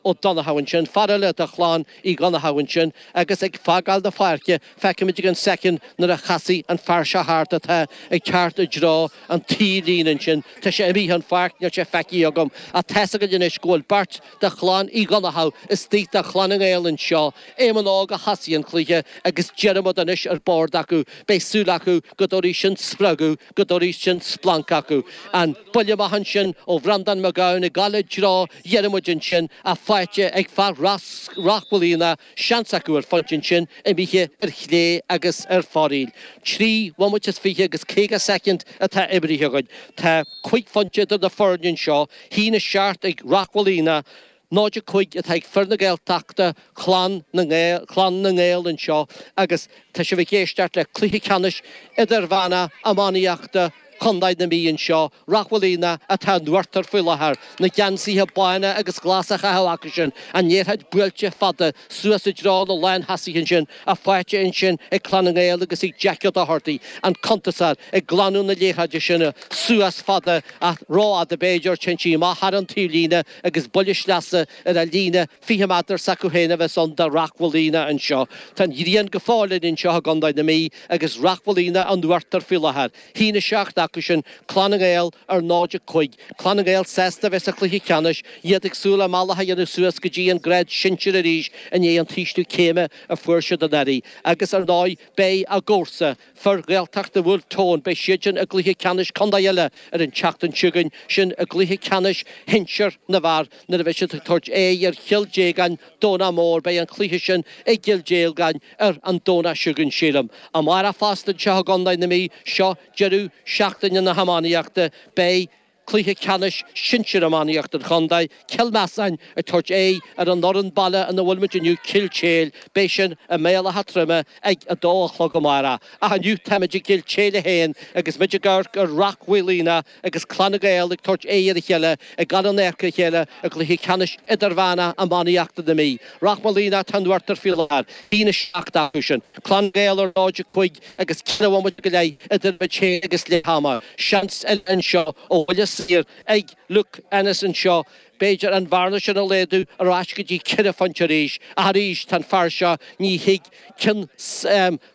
Ó Donnchadha ansin, fear eile de chlann Uí Dhonnchadha ansin, agus ag fágáil na páirce, feicfimid i gceann soicind nuair a chasfaidh an fear seo thart atá ag teacht i dtreo an taobhlíne ansin, tá sé imithe den pháirc, níl sé feicthe agam, ach tá's againn anois go bhfuil beirt de chlann Uí Dhonnchadha istigh do Chlann na nGael anseo. Éamonn Óg a thosaigh an cluiche agus Diarmaid anois ar bord acu. Beidh súil acu go dtabharfaidh sin spreagadh. go dtabharfaidh sin splanc acu. An buille amach ansin ó Bhreandán Mac Gabhann ag gabháil i dtreo Dhiarmaid ansin, ach faighte ag fear Ráth Mhaoilíona, seans acu ar phointe ansin, imithe ar chlé agus ar fóraoil. Trí bhomaite is fiche agus caoga soicind atá imrithe againn. Tá cúig phointe idir na foirne anseo, a haon a seacht ag Ráth Mhaoilíona. Náid a cúig atá ag fir na Gaeltachta, Clann na nGael, Clann na nGael anseo agus tá sibh ag éisteacht le cluiche ceannais idirmheánach iománaíochta Chondae na Mí anseo, Ráth Mhaoilíona atá in uachtar faoi láthair, na geansaithe bána agus glasa á chaitheamh acu sin, an liathróid buailte fada suas i dtreo na lántosaithe ansin, ach faighte ansin ag Clann na nGael agus ag Jeaic Ó Dochartaigh, an cuntasóir, ag glanadh na liathróide sin suas fada, ach ró-fhada b'fhéidir, téann sí amach thar an taobhlíne, agus buille sleasa ar a' líne fiche méadar s'acu fhéin a bheas ann do Ráth Mhaoilíona anseo. Tá an ghrian go fóill linn anseo i gCondae na Mí agus Ráth Mhaoilíona in uachtar faoi láthair. A haon a seacht acu sin, Clann na nGael ar 0, 5. Clann na nGael sásta a bheith sa chluiche ceannais, iad ag súil a mbealach a dhéanamh suas go dtí an grád sinsir arís i ndiaidh an t-ísliú céime a fuair siad anuraidh agus ar ndóigh beidh a gcomharsa, Fir Ghaeltachta Bhulf Tón, beidh siadsan i gcluiche ceannais contae eile ar an tseachtain seo chugainn, sin i gcluiche ceannais shinsir na bhfear nuair a bheidh siad ag tabhairt aghaidh ar Chill Dhéagláin, Domhnach Mór. Beidh an cluiche sin i gCill Dhéagláin ar an Domhnach seo chugainn, sílim. Amárach fosta anseo i gcontae na Mí, seo deireadh seachtaine na hiománaíochta. Beidh. Cluiche Ceannais Sinsir Iománaíocht an Chontae, Cill Measáin ag tabhairt aghaidh ar an fhoireann baile ina bhfuil muid inniu Cill Téil. Beidh sin i mBaile Átha Troim ag 2 a chlog amárach. Ach inniu táimid i gCill Téile féin agus muid ag amharc ar Ráth Mhaoilíona agus Clann na nGael ag tabhairt aghaidh ar a chéile ag gabháil in adharca a chéile i gCluiche Ceannais Idirmheánach Iománaíochta na Mí. Ráth Mhaoilíona atá in uachtar faoi láthair. 1 7 acu sin. Clann na nGael ar 0 5. agus ceithre bhomaite go leith idir muid féin agus leath ama seans eile anseo ó bhuille saor ag Luke Ennis anseo b'fhéidir an bhearna sin a laghdu ar ais go dtí ceithre phointe arís ach arís tá an fear seo ní thig cionn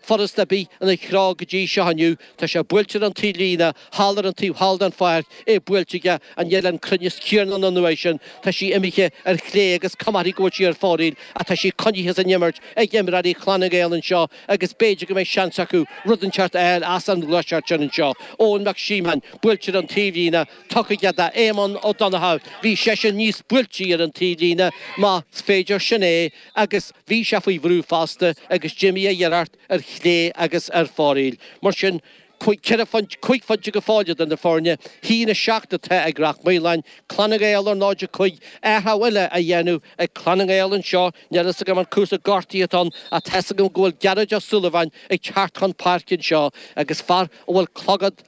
furasta ar bith ina threo go dtí seo inniu tá sé buailte ar an taobhlíne thall ar an taobh thall den pháirc é buailte aige ach níl an cruinneas céanna ann an uair sin tá sí imithe ar chlé agus comharthaí go bhfuil sí ar fóraoil ach tá sí coinnithe san imirt ag imreoirí Chlann na nGael anseo. agus b'fhéidir go mbeidh seans acu rud inteacht a fháil as an ghluaiseacht sin anseo. Eoin Mac Síomóin, buailte ar an taobhlíne, tugtha aige d'Éamonn Ó Donnchadha, bhí seisean níos buailtí ar an taobhlíne, más féidir sin é, agus bhí sé faoi bhrú fosta agus d'imigh a iarracht ar chlé agus ar foraíl. Mar sin. ceithre, cúig phointe go fóill idir na foirne. 1, 7 atá ag Ráth Moliain, Clann na nGael ar 0, 5. Athrú eile á dhéanamh ag Clann na nGael anseo. Níl a fhios agam an cúrsaí gortaithe atá ann ach tá a fhios agam go bhfuil Gearóid Ó Súilleabháin ag teacht chun páirce anseo agus fear a bhfuil clogad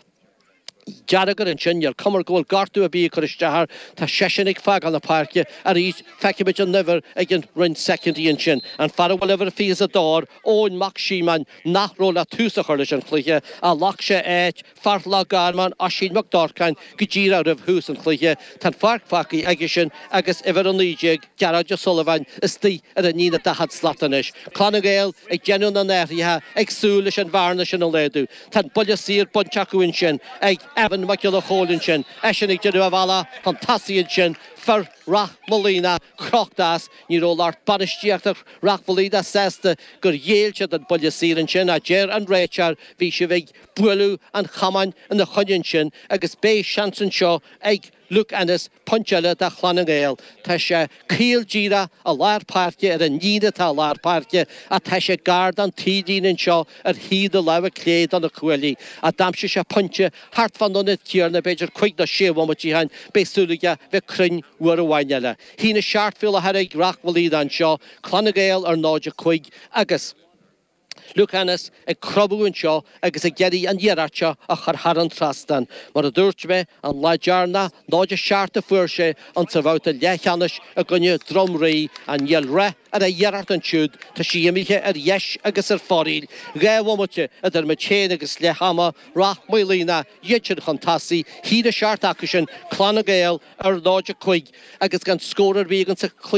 dearg air ansin. Níor chuma go bhfuil gortú ar bith ag cur isteach air. Tá seisean ag fágáil na páirce arís. Feicfimid an uimhir i gceann roinnt soicind ansin. An fear a bhfuil uimhir a 22 air, Eoin Mac Síomóin, nach raibh le tús a chur leis an chluiche ach ghlac sé áit fear Loch Garman, Oisín Mac Dárcáin, go díreach roimh thús an chluiche. Tá an pháirc fágtha aigesean agus uimhir 19, Gearóid Ó Súilleabháin, istigh ar an líne daichead slat anois. Clann na nGael ag déanamh na n-athruithe, ag súil leis an bhearna sin a laghdú. Tá an buille saor bainte acu ansin ag Evan Mac Giolla Chóill ansin, eisean ag déanamh a bhealach chun tosaigh ansin, fir Ráth Moliain crochta as. Ní raibh lucht bainistíochta Ráth Moliain sásta gur ghéill siad an buille saor ansin, a deir an réiteoir, bhí sibh ag bualadh an chamáin ina choinne ansin agus beidh seans anseo ag Luke Ennis pointe eile do Chlann na nGael. Tá sé caol díreach i lár páirce, ar an líne atá i lár páirce ach tá sé gar don taobhlíne anseo ar thaobh na láimhe clé de na cuaillí, a d'aimsigh sé pointe Thart fán ionad céanna, b'fhéidir cúig nó sé bhomaite ó shin, beidh súil aige bheith cruinn uair amháin eile. 1 7 go fóill atá ag Ráth Moliain anseo, Clann na nGael ar 0 5, agus Luke Ennis ag cromadh anseo agus ag iarraidh an iarracht seo a chur thar an trasnán. Mar a dúirt mé an lá deireanach, 0 7 a fuair sé an sa bhabhta leathcheannais i gcoinne Droim Rí, ach níl rath ar a iarracht ansiúd, tá sí imithe ar dheis agus ar foraíl, dhá bhomaite idir muid féin agus leath ama, Ráth Moliain go deimhin chun tosaigh, a haon a seacht acusan, Clann na nGael ar náid a cúig agus gan scór ar bith againn sa